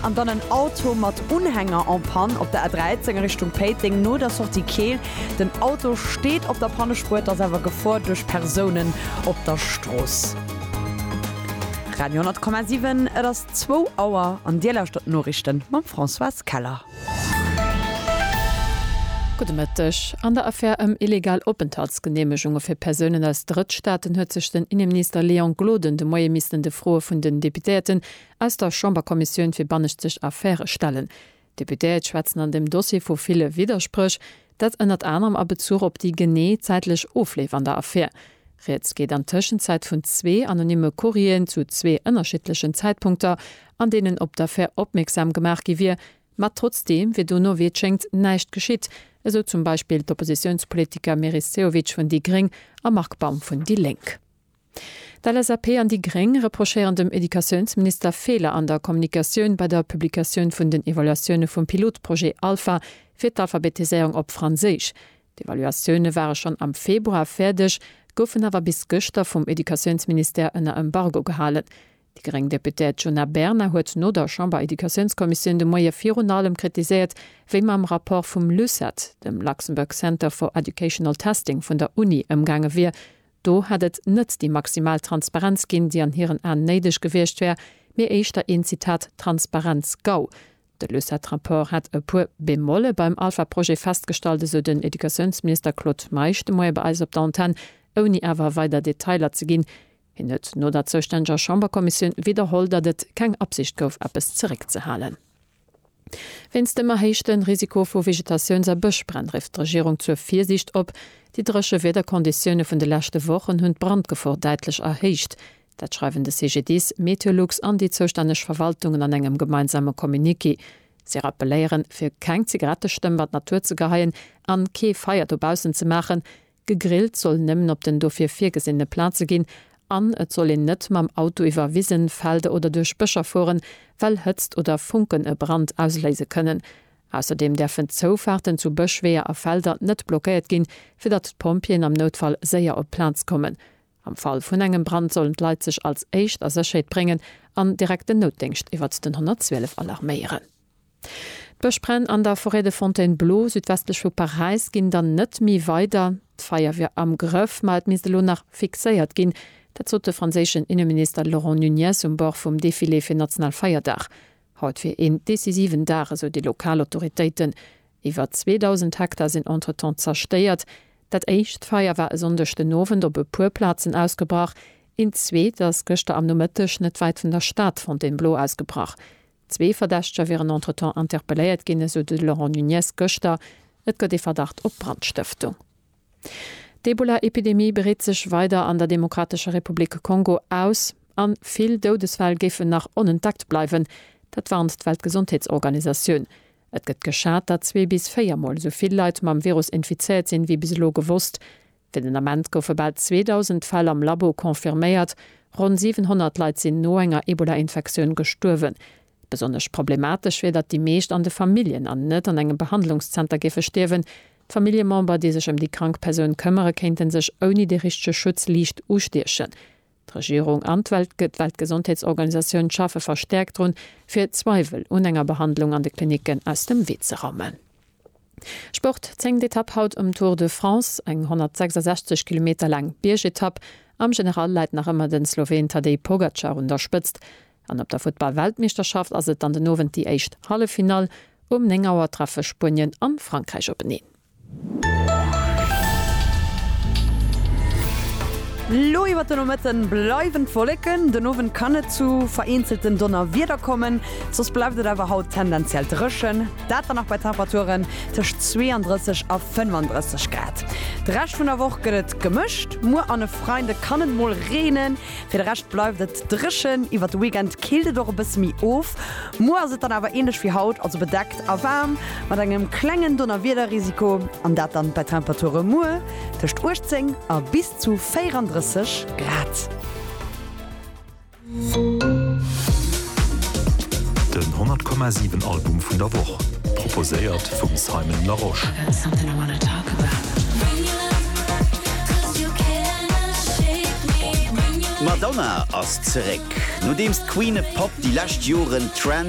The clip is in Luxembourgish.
an dann en Auto mat Unhänger en Panne op der A13 a Richtung Péiteng no der Sortie Keel. Den Auto steet op der Pannespuer, et ass awer Gefor duerch Persounen op der Strooss. Radio 10,7 Et ass zwou Auer an Dir lauschtert d'Noriichte mam Françoise Keller. Gudde Mëtteg. An der Affär ëm illegal Openthaltsgeneemegunge fir Persounen aus Drëttstaaten huet sech den Inneminister Léon Gloden de Moie missten de Froe vun den Deputéierten Aus der Chamberkommissioun fir banneschtseg Affäre stellen. D'Deputéiert schwätzen an deem Dossier vu ville Widderspréch, dat ënnert anerem a Bezuch op déi genee zäitlech Ofleef an der Affär. Rieds geet an Tëschenzäit vun zwee anonymme Courrieren zu zwee ënnerschiddlechen Zäitpunkter, an deenen op d'Affär opmierksam gemaach gi wier, ma trotzdeem wier dono, wéi et schéngt, näischt geschitt, esou zum Beispill d'Oppositiounspolitiker Meris Sehovic vun déi gréng a Marc Baum vun déi lénk. D'LSAP an déi Gréng reprochéieren dem Educatiounsminister Feeler an der Kommunikatioun bei der Publikatioun vun den Evaluatioune vum Pilotprojet Alpha fir d'Alphabetiséierung op Franséisch. D'Evaluatioune ware schonn am Februar fäerdeg, goufen awer bis gëschter vum Educatiounsministère ënner Embargo gehalen. Déi gréng Deputéiert Djuna Bernard huet no der Chamber-Educatiounskommissioun de Moie virun allem kritiséiert, wéi mam Rapport vum LUCET, dem Luxembourg Center for Educational Testing vun der Uni, ëmgaange wier, Do hätt et net déi maximal Transparenz ginn, déi an hiren Aen néideg gewiescht wär, mee éischter een, Zitat, Transparenz-Gau. De LUCET-Rapport hätt e puer Bemolle beim Alpha-Projet festgestallt, esou den Educatiounsminister Claude Meisch de Moie bei eis op der Antenn, ouni awer weider Detailer ze ginn. Hien huet no der zoustänneger Chamberkommissioun widderholl, datt et keng Absicht gouf, eppes zeréckzehalen. Wéinst dem erhéichte Risiko vu Vegetatiouns a Bëschbränn rifft d'Regierung zur Virsiicht op. Déi dréche Wiederkonditioune vun de leschte Wochen hunn d'Brandgefor däitlech erhéicht. Dat schreiwen de CGDIS, Meteolux an déi zoustänneg Verwaltungen an engem gemeinsame Communiqué. Si rappelléieren, fir keng Zigarettestëmm an d'Natur ze geheien an kee Feier dobaussen ze maachen, Gegrillt soll nëmmen op den dofir virgesinne Plaze ginn an et soll een net mam Auto iwwer Wisen, Felder oder duerch Bëscher fueren, well Hëtzt oder Funken e Brand ausléise kënnen. Ausserdeem däerfen d'Zoufaarten zu Bësch, Weeër a Felder net blockéiert ginn, fir datt d'Pompjeeën am Noutfall séier op d'Plaz kommen. Am Fall vun engem Brand sollen d'Leit sech als éischt a Sécherheet bréngen an direkt den Noutdéngscht iwwert den 112 alarméieren. D'Bëschbränn an der Forêt de Fontainebleau, südwestlech vu Paräis, ginn dann net méi weider. D'Feier wier am Grëff, ma et misst elo nach fixéiert ginn. Dat sot de franséischen Inneminister Laurent Nunez um Bord vum Defilé fir Nationalfeierdag. Haut wier een decisiven Dag, esou déi lokal Autoritéiten. Iwwer 2.000 Hektar sinn entretemps zerstéiert. Dat éischt Feier war e Sonndeg den Owend op e puer Plazen ausgebrach. Een zweet ass gëschter am Nomëtteg net wäit vun der Stad Fontainebleau ausgebrach. Zwee Verdächteger wieren entretemps interpelléiert ginn, esou de Laurent Nunez gëschter. Et gëtt ee Verdacht op Brandstëftung. D'Ebola-Epidemie breet sech weider an der Demokratescher Republik Kongo aus a vill Doudesfäll géifen nach onentdeckt bleiwen. Dat warnt d'Weltgesondheetsorganisatioun. Et gëtt geschat, datt zwee bis véier Mol esou vill Leit mam Virus infizéiert sinn, wéi bis elo gewosst. Fir den Ament goufe bal 2.000 Fäll am Labo confirméiert, ronn 700 Leit sinn no enger Ebola-Infektioun gestuerwen. Besonnesch problematesch wier, datt déi meescht an de Familljen an net an engem Behandlungszenter géife stierwen. D'Familljemember, déi sech ëm déi krank Persoun këmmere kéinte sech ouni dee richtege Schutz liicht ustiechen. D'Regierung an d'Weltgesondheetsorganisatioun schaffe verstäerkt drun, fir Zweiwel un enger Behandlung an de Klinicken aus dem Wee ze raumen. Sport, Zéngt Etapp haut um Tour de France, eng 166 Kilometer laang Biergetapp. Am General läit nach ëmmer de Sloween Tadej Pogacar un der Spëtzt. An op der Futtball-Weltmeeschterschaft ass et dann den Owend déi éischt Halleffinall. Um 9 Auer treffe Spuenien an Frankräich openeen. Lo iwwert de Nomëtte bleiwen d'Wolleken, den Owend kann et zu vereenzelten Donnerwieder kommen, soss bleift et awer haut tendenziell dréchen, dat dann nach bei Temperaturen tëscht 32 a 35 Grad. De Rescht vun der Woch gëtt et gemëscht, muer an e Freide kann et mol reenen. Fir de Rescht bleift et dréchen, iwwert de Weekend killt et och e bësse méi of. Muer ass et dann awer änlech wéi haut, also bedeckt a waarm mat engem klengen Donnerwiederrisiko, an dat dann bei Temperature muer tëscht 18 a bis zu 34 Grad. Den 100 Komma 7 Album vun der Woch, proposéiert vum Simon Larosche. D'Madonna ass zeréck. Nodeems d'Queen e Pop déi lescht Joren Trends